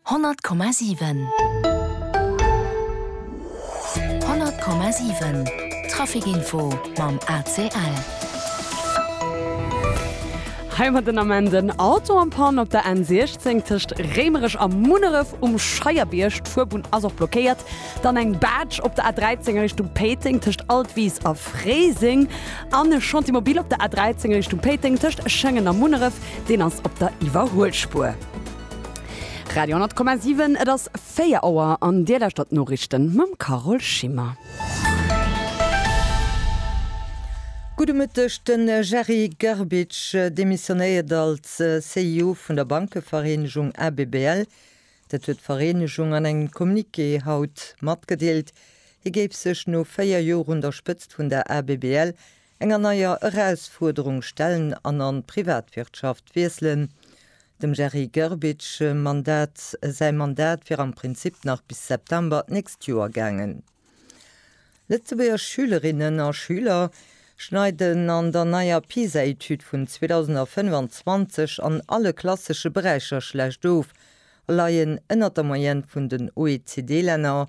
Honnert Komma siwen. Honnert Komma siwen, Trafikinfo mam ACL. Hei huet den Ament en Auto eng Pann op der N16 tëscht Réimerech a Munneref um Scheierbierg. D'Fuerbunn ass och blockéiert. Dann eng Barge op der A13 a Richtung Péiteng tëscht Altwis a Fréiseng. En Chantier mobile op der A13 Richtung Péiteng tëscht Schengen a Munneref, deen ass op der Iwwerhuelspuer. Radio 10,7 Et ass 4 Auer an Dir lauschtert d'Noriichten mam Carole Schimmer. Gudde Mëtteg, De Jerry Grbic demissionéiert als CEO vun der Bankevereenegung ABBL. Dat huet d'Vereenegung an engem Communiqué haut matgedeelt. Hie géif sech no 4 Joer un der Spëtzt vun der ABBL enger neier Erausfuerderung stellen an an d'Privatwirtschaft wiesselen. Dem Gerry Grbic Mandat säi Mandat wier am Prinzip nach bis September d'nächst Joer gaangen. Lëtzebuerger Schülerinnen a Schüler schneiden an der neier PISA-Etüd vun 2025 an alle klassesche Beräicher schlecht of a leien ënnert der Moyenne vun den OECD-Länner.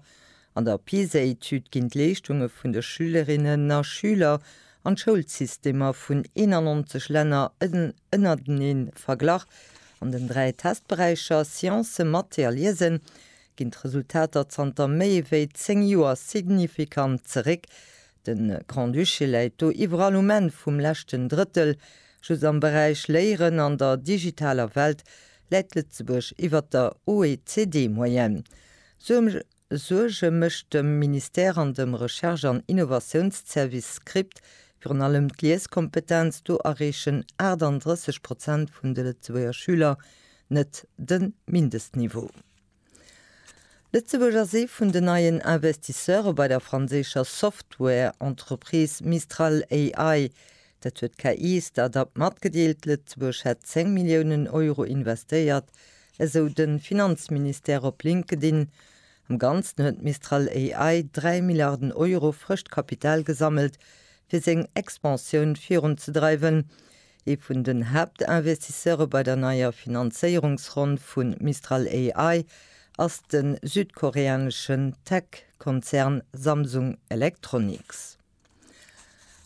An der PISA-Etüd ginn d'Leeschtunge vun de Schülerinnen a Schüler an d'Schoulsystemer vun 91 Länner ënnertenee verglach. An den dräi Testberäicher Sciencen, Mathé a Liesen ginn d'Resultater zanter méi wéi 10 Joer signifikant zeréck. De Grand-Duché läit do iwwerall um Enn vum leschten Drëttel. Just am Beräich Léieren an der digitaler Welt läit Lëtzebuerg iwwer der OECD-Moyenne. Suerge mécht dem Ministère an dem Recherche an Innovatiounsservice Script virun allem d'Lieskompetenz, do erreechen 38 Prozent vun de Lëtzebuerger Schüler net de Mindestniveau. Lëtzebuerg ass ee vun den neien Investisseure bei der franséischer Software-Entreprise Mistral AI. Dat huet d'KI-Start-up matgedeelt. Lëtzebuerg hätt 10 Milliounen Euro investéiert, esou de Finanzministère op LinkedIn. Am Ganzen huet Mistral AI 3 Milliarden Euro frëscht Kapital gesammelt, fir seng Expansioun virunzedreiwen. Ee vun den Haaptinvestisseure bei der neier Finanzéierungsronn vu Mistral AI ass de südkoreaneschen Tech-Konzern Samsung Electronics.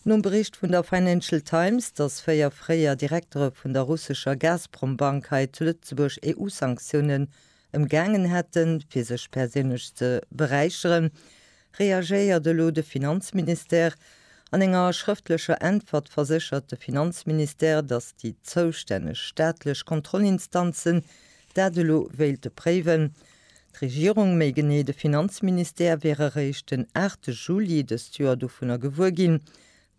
Nom Bericht vun der Financial Times, datt véier fréier Direktere vun der russescher Gazprom-Bank hei zu Lëtzebuerg EU-Sanktioune ëmgaangen hätten, fir sech perséinlech ze beräicheren, reagéiert elo de Finanzministère. An enger schrëftlecher Äntwert verséchert de Finanzministère, datt déi zoustänneg staatlech Kontrollinstanzen dat elo wéilte préiwen. D'Regierung, méi genee de Finanzministère, wier eréischt den 8 Juli dëst Joer dovunner gewuer ginn,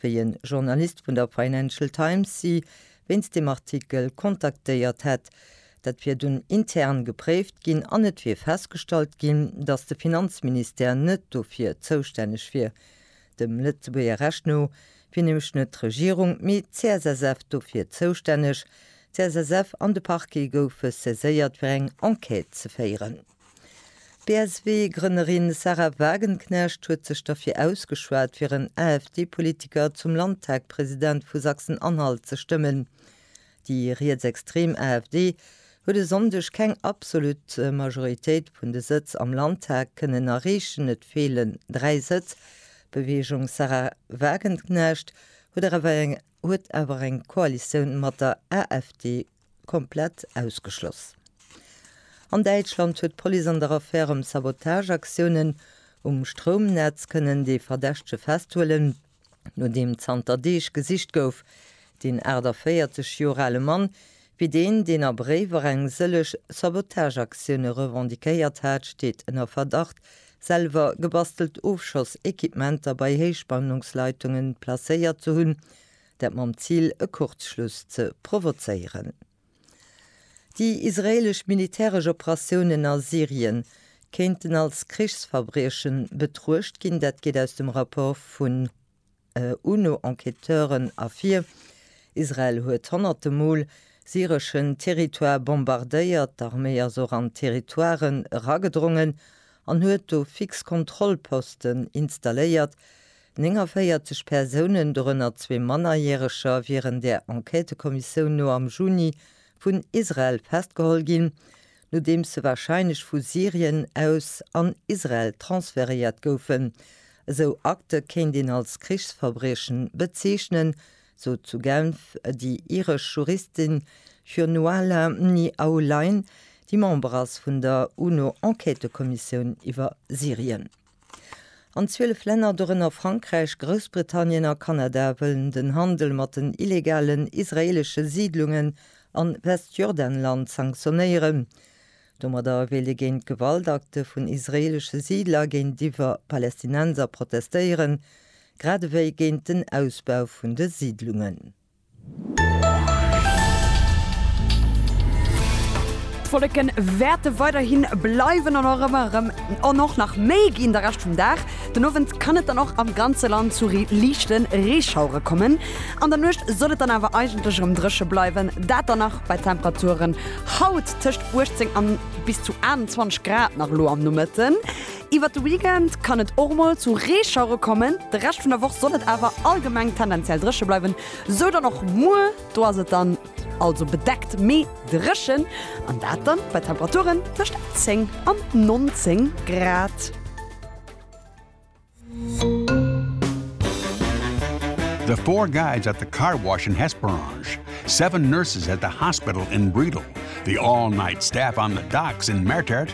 wéi en Journalist vun der Financial Times si wéinst deem Artikel kontaktéiert hätt. Dat wier dunn intern gepréift ginn an et wier festgestallt ginn, datt de Finanzministère net dofir zoustänneg wier. Dem Lëtzebuerger Recht no wier nämlech net d'Regierung, mee d'CSSF dofir zoustänneg. D'CSSF an de Parquet goufe saiséiert fir eng Enquête ze féieren. D'BSW-Grënnerin Sahra Wagenknecht huet sech derfir ausgeschwat, fir en AfD-Politiker zum Landtagpresident vu Sachsen-Anhalt ze stëmmen. Déi rietsextrem AfD huet e Sonndeg keng absolut Majoritéit vun de Sëtz am Landtag kënnen erreechen, et feelen dräi Sëtz. D'Beweegung Sahra Wagenknecht huet awer eng huet awer eng Koalitioun mat der AfD komplett ausgeschloss. An Däitschland huet d'Police an der Affär ëm Sabotageaktiounen um Stroumnetz kënnen dee Verdächtege festhuelen, no deem zanter Deeg gesicht gouf. Deen 48 Joer ale Mann Wéi deen, deen a Bréiwer eng sëlleg Sabotageaktioune revendiquéiert hat, steet ënner Verdacht, selwer gebastelt Ofschoss-Equipementer bei Héichspannungsleitungen placéiert ze hunn, dat mam Zil, e Kurzschluss ze provozéieren. Déi israeelesch militäresch Operatiounen a Syrien kéinten als Krichsverbriechen betruecht ginn, dat geet aus dem Rapport vun UNO-Enquêteuren ervir, Israel huet honnerte Mol syreschen Territoire bombardéiert, d'Arméi ass och an d'Territoiren eragedrongen an huet do fix Kontrollposten installéiert. 49 Persounen, dorënner zwee Mannerjäreger, wieren der Enquêtekommissioun no am Juni vun Israel festgeholl ginn. nodeems se warscheinlech vu Syrien aus an Israel transferéiert goufen. Esou Akte kéint een als Krichsverbriechen bezeechnen, sot zu Genf déi iresch Juristin Fionnuala Ni Aulain, déi Member ass vun der UNO-Enquêtëkommissioun iwwer Syrien. An 12 Länner, dorënner Frankräich, Groussbritannien a Kanada, wëllen den Handel mat den illegalen israeelesche Siidlungen am Westjordanland sanktionéieren. Domadder wéilt ee géint d'Gewaltakte vun israeelesche Siidler géintiwwer Palästinenser protestéieren, grad ewéi géint den Ausbau vun de Siidlungen. D'Wolleken wärte weiderhin bleiwen an och ëmmer erëm an och nach méi ginn de Rescht vum Dag. Den Owend kann et dann och am ganze Land zu liichte Reeschauere kommen. An der Nuecht soll et dann awer eigentlech erëm dréche bleiwen, dat dann nach bei Temperaturen haut tëscht 18 an bis zu 21 Grad nach elo am Nomëtten. Iwwert de Weekend kann et och mol zu Reeschauere kommen, de Rescht vun der Woch soll et awer allgemeng tendenziell dréche bleiwen, sou dann och muer. Do ass et dann also bedeckt, mee dréchen an dat dann bei Temperaturen tëscht 10 an 19 Grad. The four guys at the car wash in Hesperange, seven nurses at the hospital in Bredal, the all-night staff on the docks in Mertert,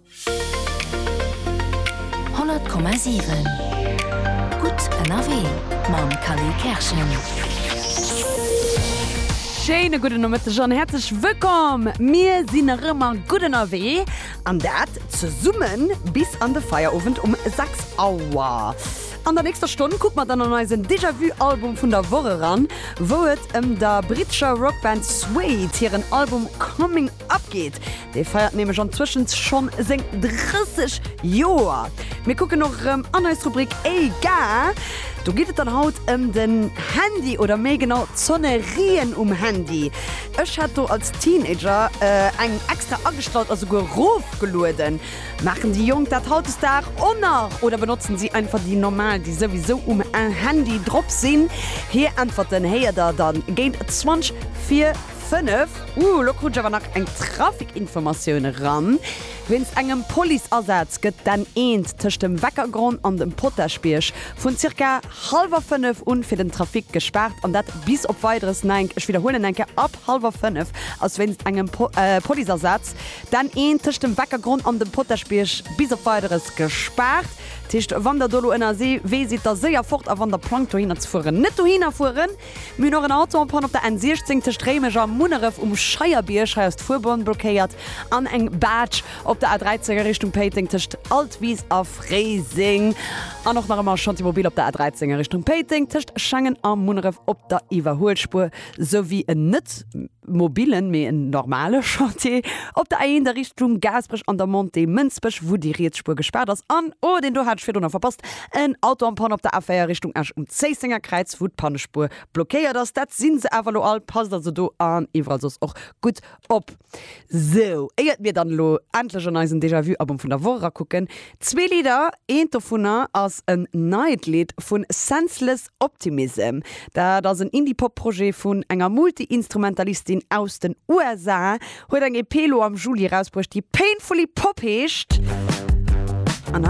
100,7 Gutt ënnerwee mam Khalil Kerschen. Schéine gudden Nomëtteg an häerzlech wëllkomm! Mir sinn nach ëmmer gutt ënnerwee an dat zesumme bis an de Feierowend um 6 Auer. An der nächster Stonn kucke mer dann an eisen Déjà-Vu-Album vun der Woch eran, wou et ëm der brittescher Rockband Suede hiren Album Coming Ab geht! Dee feiert nämlech an zwëschens schonn seng 30 Joer. Mir kucken och erëm an eis Rubrik Ey ga! Do geet et dann haut ëm den Handy oder méi genau d'Sonnerien um Handy. Ech hat do als Teenager eng extra agestallt a souguer rofgelueden. Maachen déi Jonk dat hautdesdag och nach oder benotzen si einfach déi normal, déi souwisou um Handy drop sinn? Hir Äntwerten héiert der dann géint 20 vir. 5, Ooh, lo krut ech awer nach eng Trafikinformatioun eran. Wéinst engem Policeasaz gëtt d'N1 tëscht dem Weckergronn an dem Potaschbierg vun zirka hallwer 5 un fir den Trafic gespaart an dat bis op Weideres Nenk. Ech widderhuelen Nenke, Ab hallwer 5 ass wéinst engem Policeasaz d'N1 tëscht dem Weckergronn an dem Potaschbierg bis op Weideres gespaart. Dat heescht, wann der do lo ënnerwee sidd, da séier fort a wann der plangt dohinner ze fueren, net dohinner fueren. Mir hunn och en Autoempfang op der N 16 tëscht Réimech a Munneref um Scheierbierg, hei ass d'Fuerbunn blockéiert, an eng Baatsch op der A 13 a Richtung Péiteng tëscht Altwis a Fréiseng an och nach ëmmer Chantier Mobil op der A 13 a Richtung Péiteng tëscht Schengen a Munneref op der Iwwerhuelspuer, souwéi en net. mobilen, mee en normale Chantier op der A1 a Richtung Gaasperech an der Montée Mënsbech, wou déi riets Spuer gespaart ass. An, oh, deen do hat ech virdrun nach verpasst, en Auto am Panne op der A4 Richtung Esch um Zéissenger Kräiz, wou d'Pannespuer blockéiert ass. Dat si se awer elo all. Passt also do an iwwerall soss och gutt op. Sou, éiert mir dann elo endlech an eisen Déjà-vu-Album vun der Woch erakucken, zwee Lidder. Eent dovunner ass en neit Lidd vu Senseless Optimism, dat ass en Indie-Pop-Projet vun enger Multi-Instrumentalistin aus den USA, huet eng EP elo am Juli erausbruecht, déi Painfully Pop heescht.